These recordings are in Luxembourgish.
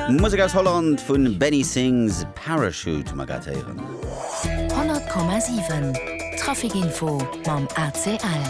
Musek aus Holland vun Benny Sings Parachute ma grad héieren. 100,7 Trafic info mam ACL.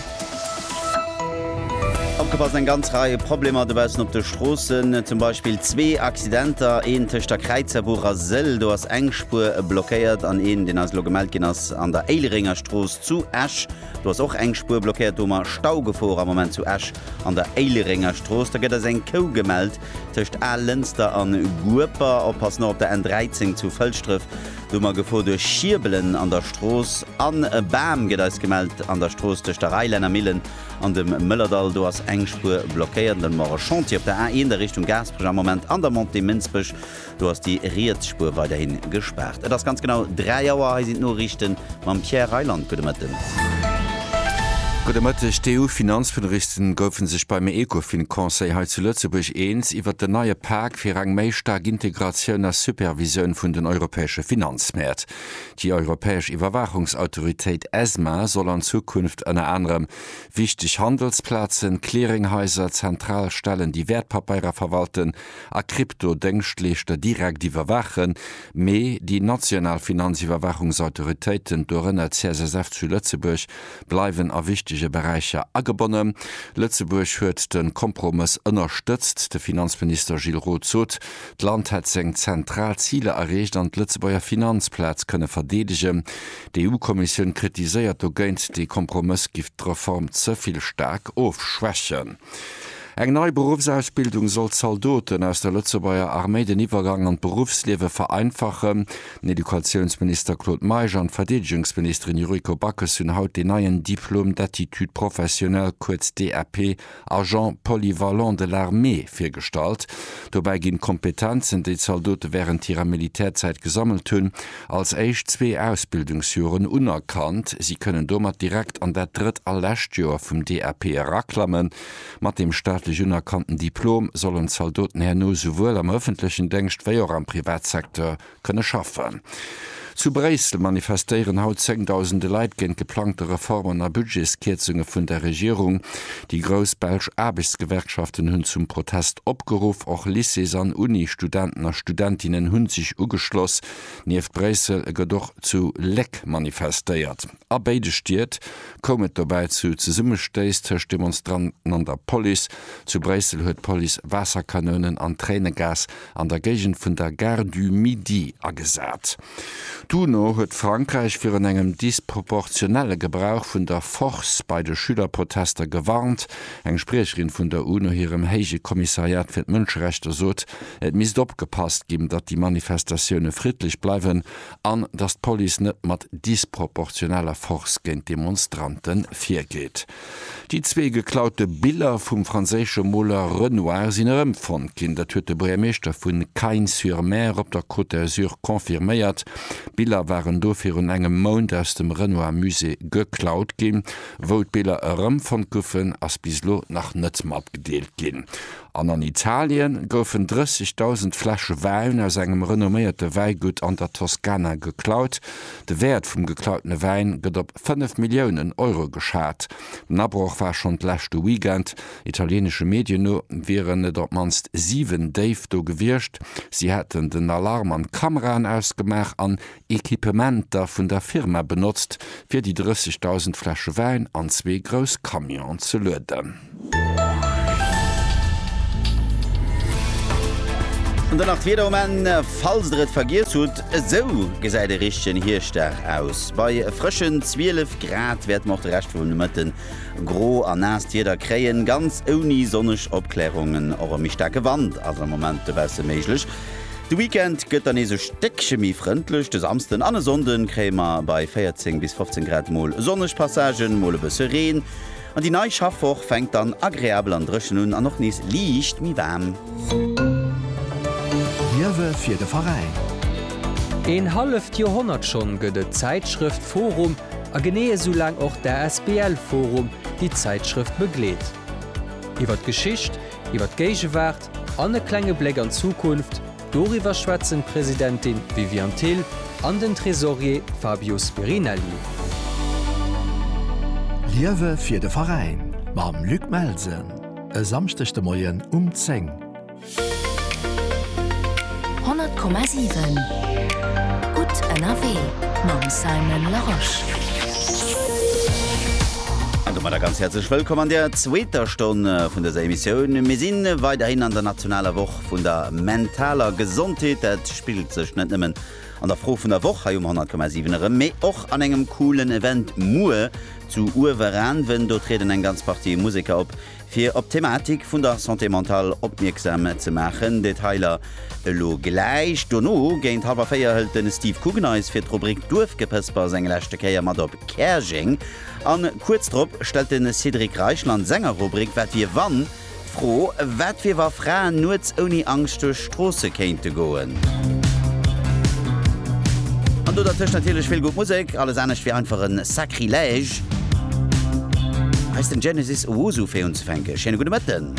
Opgepasst, eng ganz Rei Problemer dobaussen op de Stroossen. Zum Beispill zwee Accidenter, een tëscht der Kräizerbuch a Sëll, do ass eng Spuer blockéiert, an een, deen eis elo gemellt ginn ass, an der Éileréngerstrooss zu Esch, do ass och eng Spuer blockéiert. Do hu mer Staugefor am Moment zu Esch. An der Éilerengerstrooss, da gëtt eis eng Kou gemellt, tëscht Al-Lënster an Gueper. Oppassen, och op der N13 zu Fëlschdref, do hu mer Gefor duerch Schierbelen an der Strooss. An e Bam gëtt eis gemellt an der Strooss tëscht der Reilännermillen an dem Mëllerdall, do ass eng Spuer blockéiert. An dann hu mer och e Chantier op der A1 a Richtung Gaasperech am Moment an der Montée Mënsbech, Do ass déi riets Spuer weiderhi gespaart. Et ass ganz genau 3 Auer. Hei sinn d'Noriichten mam Pierre Reyland. Gudde Mëtten. Gudde Mëtteg. D'EU-Finanzministeren goufe sech beim Ecofin-Conseil hei zu Lëtzebuerg eens iwwert den neie Pak fir eng méi staark Integratioun a Supervisioun vun den europäesche Finanzmäert. Déi europäesch Iwwerwaachungsautoritéit Esma soll an Zukunft ënner anerem wichteg Handelsplazen, Clearinghaiser, zentral Stellen, déi Wäertpapeirer verwalten, a Kryptodéngschtleeschter direkt iwwerwaachen, mee déi national Finanziwwerwaachungsautoritéiten, dorënner d'CSSF zu Lëtzebuerg, bleiwen a wichtege Beräicher agebonnen. Lëtzebuerg huet de Kompromëss ënnerstëtzt. De Finanzminister Gilles Roth sot, d'Land hätt seng zentral Ziler erreecht an d'Lëtzebuerger Finanzplaz kënne verdeedegen. D'EU-Kommissioun kritiséiert dogéint, de Kompromëss giff d'Reform ze vill staark ofschwächen. Eng nei Beruffsausbildung soll Zaldoten aus der Lëtzebuerger Arméi den Iwwergang an d'Beruffsliewe vereinfachen. Den Educatiounsminister Claude Meisch an d'Verdeedegungsministerin Yuriko Backes hunn haut deen neien Diplôme d'aptitude professionnelle, kuerz DAP, Agent polyvalent de l'armée virgestallt. Dobäi ginn d'Kompetenzen, déi d'Zaldote wärend hirer Militärzäit gesammelt hunn, als éischt zwee Ausbildungsjoren unerkannt. Si kënnen domat direkt an dat drëtt a lescht Joer vum DAP eraklammen. Mat deem staatlech unerkannten Diplom sollen d'Zaldoten herno souwuel am ëffentlechen Déngscht wéi och am Privatsecteur kënne schaffen. Zu Bréissel manifestéieren haut zéngdausende Leit géint geplangte Reformen a Budgetskierzunge vun der Regierung. Déi grouss belsch Aarbechtsgewerkschaften hunn zum Protest opgeruff. Och Lycées an Uni-Studenten a Studentinnen hunn sech ugeschloss. Nieft Bréissel gëtt och zu Léck manifestéiert. A béide Stied koum et dobäi zu Zesummestéiss tëscht Demonstranten an der Police. Zu Bréissel huet d'Police Waasserkanounen an Tréinegas an der Géigend vun der Gare du Midi agesat. D'UNO huet Frankräich virun engem disproportionelle Gebrauch vun der Force bei de Schülerprotester gewarnt. Eng Spriecherin vun der UNO hirem héije Kommissariat fir d'Mënscherechter sot, Et misst opgepasst ginn, datt déi Manifestatioune friddlech bleiwen an datt d'Police net mat disproportioneller Force géint d'Demonstrante virgeet. Déi zwee geklaute Biller vum franséische Moler Renoir sinn erëmfonnt ginn. Dat huet de Buergermeeschter vu Cagnes-sur-Mer op der Côte d'Azur confirméiert. D'Biller waren do virun engem Mount aus dem Renoir Musée geklaut ginn. Wou d'Biller erëmfonnt goufen, ass bis elo nach net matgedeelt ginn. An an Italien goufen 30.000 Fläsche Wäin aus engem renomméierte Wäigutt an der Toskana geklaut. De Wäert vum geklautene Wäin gëtt op 5 Milliounen Euro geschat. Den Abroch war schonn d'leschte Weekend. Italieenesche Medien no wieren et op d'mannst 7 Déif do gewiescht. Si hätten den Alarm an d'Kameraen ausgemaach an Equipementer vun der Firma benotzt, fir déi 30.000 Fläsche Wäin an zwee grouss Camionen ze lueden. An dann nach d'Wieder um Enn, falls der et vergiess hutt. Esou gesäit e richtegen Hierschtdag aus. Bei frëschen 12 Grad wäerte mer och de Rescht vum Mëtte gro a naasst Wieder kréien, ganz ouni sonneg Opklärungen. Och e méi staarke Wand ass am Moment dobausse méiglech. De Weekend gëtt dann nees e Stéckche méi frëndlech. De Samsden an e Sonnde kréie mer bei 14 bis 15 Grad mol sonneg Passagen, mol e bësse Reen. An déi nei Schaffwoch fänkt dann agreabel an dréchen un an och nees liicht méi waarm. Liewe fir de Veräin! Een halleft Joerhonnert schonn gëtt et d'Zäitschrëft forum a genee esou laang och d'ASBL forum, déi d'Zäitschrëft begleet. Iwwer d'Geschicht, iwwer d'Géigewaart, An e klenge Bléck an d'Zukunft, doriwwer schwätzen d'Presidentin Viviane Thill an den Tresorier Fabio Spirinelli. Liewe fir de Veräin mam Luc Melsen e Samschdeg de Moien um 10. 100,7 Gutt ënnerwee mam Simon Larosche. An domadder ganz häerzlech Wëllkomm an der zweeter Stonn vun dëser Emissioun. Mir si weiderhin an der nationaler Woch vun der mentaler Gesondheet. Dat spigelt sech net nëmmen an der Fro vun der Woch hei um 100,7 erëm, mee och an engem coolen Event muer zu Uewerän. Ween? Do trieden eng ganz Partie Museker op, Fir op d'Thematik vun der Santé mentale opmierksam ze maachen, Detailer elo gläich. Dono géint hallwer 4 hëlt de Steve Coogan eis fir d'Rubrik Duerfgepëspers eng leschte Kéier mat op Käerjeng. An kuerz drop stellt de Cédric Reichel an senger Rubrik Wat wier wann? d'Fro, Wat wier wa Fraen nuets ouni Angscht duerch Stroosse kéinte goen. An do dertëscht natierlech vill gutt Musek, alles anescht wier einfach e Sacrilège. Hei ass den Genesis Owusu fir unzefänke. Schéine gudde Mëtten.